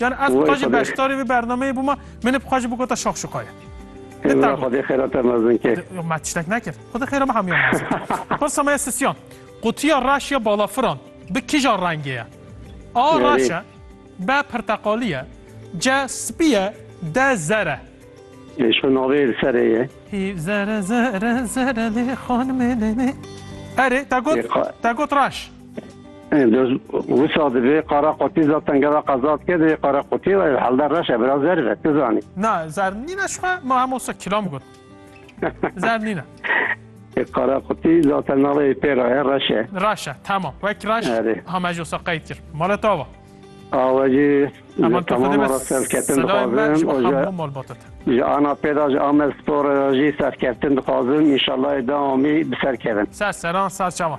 Yani ez bixwe jî beşdarî vê bernameyê bûma, min ê bixwe jî bigota şaxşuxa ye. Hêzra Xwedê xêra te mezin ke. Me tiştek nekir. Xwedê xêra me hemiyan mezin. Pirsa me ye sisiyan. Qutiya reş ya balafiran bi kija rengê ye? A reş e, B pirteqalî ye, C spî ye, D zer e. Lê şo navê li serê ye. Hî zere zere zere lê xanimê lê lê. Erê te got te got reş. Doz wisa divê qara qutî za tengera qeza dike divê qara qutî ve helde reş e bira zer ve tu zanî. Na zer nîne şixwe ma hemo se kilam got. Zer nîne. E qara qutî zaten navê pêra ye reş e. Reş e tamam wek reş ha me jo se qeyd kir. Mala tava. Awacî Aman tu xwedê bes serketin dixwazin o ji malbatet. Ji ana pêda ji Amed Spor jî serketin dixwazin. İnşallah dawamî bi ser kevin. Ser seran ser çavan.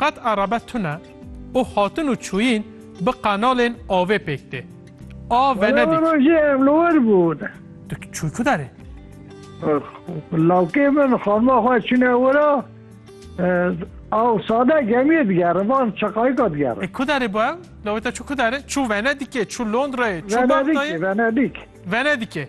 Qet erebe tune û hatin û çûyîn bi qenalên avê pêk tê. A Venedik. Were rojê ev li wir bûn. Tu çûy ku derê? Lawkê min xanima xwe çûne wir a. Aw sade gemiyê digerin van çeqayika digerin. E ku derê bû ew? Lawê te çû ku derê? Çû Venedikê, çû Londrayê, çû Bagdayê? Venedik, Venedik. Venedikê.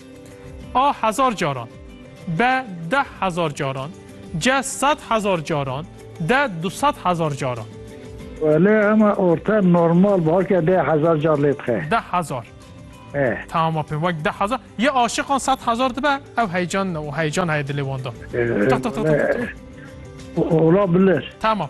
A hezar caran. B deh hezar caran. C sed hezar caran. D du sed hezar caran. Lê ema orta normal bi halkê deh hezar car lê dixe. Deh hezar. E. Tamam apê wek deh hezar. Yê aşiqan sed hezar dibe ew heyecan û heyecan heye dilê wan de. Tih tih tih tih tih. Ola bilir. Tamam.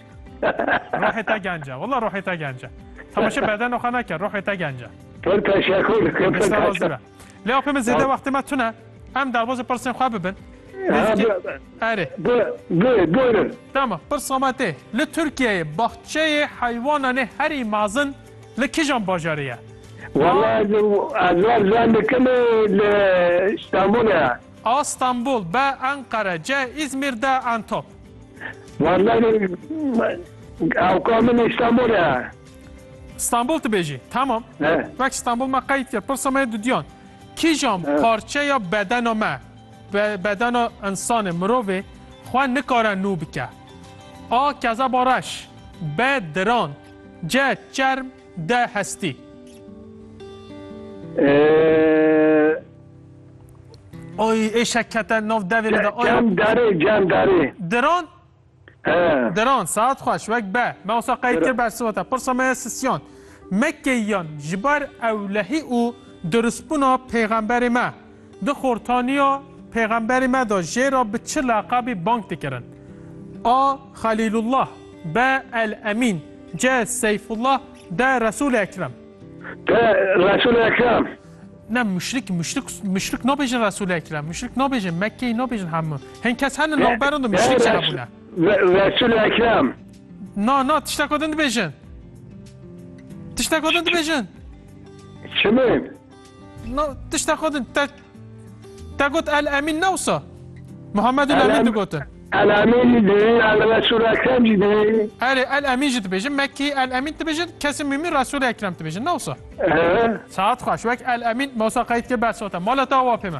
Ruhê te gence. Wala ruhê te gence. Temaşe bedeno xwe neke, ruhê te gence. Pir teşekkür. Pir Nişte teşekkür. razîbe. Lê apê min zêde wextê me tune. Em derbasî pirsên xwe bibin. Ha, Nêzîkî. bi- Erê. bi- bi- Buyurun. Tamam. Pirsa me tê. Li Tirkiyeyê baxçeyê heywananê herî mezin li kijan bajarê ye? Vallahi ez ez var zandikim li İstanbul'a. A Stenbul, B Enqere, C Îzmîr, D Entop. Wallahî ewka min Îstanbul e. Stenbul tu bêjî. Tamam. Wek Stenbul me qeyd kir. Pirsa me dudyan. Kîjan parçeya bedena me, bedena însanê, mirovê xwe nikare nû bike? A kezeba reş, B diran, C çerm, D hestî. Oy êşek kete nav devê me de. Cem derê cem derê. Diran? He. Diran saet xweş wek be. Me osa qey kir bersima te. Pirsa me ye sisyan. Mekkeyiyan ji ber ewlehî û dirustbûna pêxemberê me di xortaniya pêxemberê me de jê re bi çi leqabî bang dikirin? A. Xelîlullah B. El Emîn C. Seyfullah D. Resûlê Ekrem Te Resul Ekrem. Ne müşrik müşrik müşrik nabêjin Resul Ekrem. Müşrik nabêjin Mekkeyê nabêjin hemû. Hin kes henin navberin de müşrik jî hebûne. Resul Ekrem. Na na tişteka din dibêjin. Tişteka din dibêjin. Çimin? No, tişta xwe din te te got El Emîn ne wisa? Muhammed El Emîn digotin. El Emîn jî dibî, El Resul Ekrem jî dibî. Erê El Emîn jî dibêjin, me kî El Emîn dibêjin, kesê mîmî Resul Ekrem dibêjin ne wisa? Saet xweş, wek El Emîn me wisa qeyd kir bes ota. Mala te awa pê me.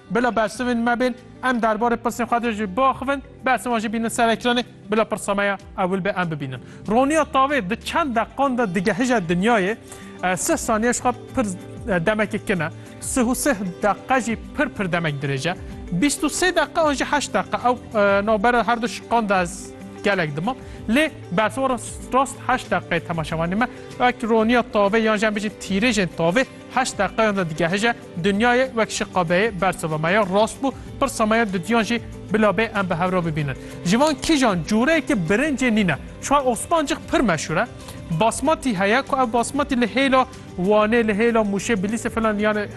Bila bersivên me bên, em derbarê pirsên xwe de jî biaxivin, behsên wan jî bînin ser ekranê, bila pirsa me ya ewil be em bibînin. Roniya tavê di çend deqan de digehije dinyayê, sih saniye ji xwe pir demekê kin e, sih û sih deqe jî pir pir demek dirêj e. Bîst û sê deqe an jî heşt deqe ew navbera her du şiqan de ez gelek dimam. Lê bersivana rast heşt deqeyê temaşevanê me wek roniya tavê yan jî em bijîn tîrêjên tavê Heşt deqeyan de digehije dinyayê wek şi qabeyê bersiva me ya rast bû, pirsa me ya didiyan jî bila bê em bi hev re bibînin. Ji van kîjan cureyekê birincê nîne. Çiwa Osmancik pir meşhur e. Basmatî heye ku ev basmatî li hêla Wanê, li hêla Mûşê, Bilîsê filan yanê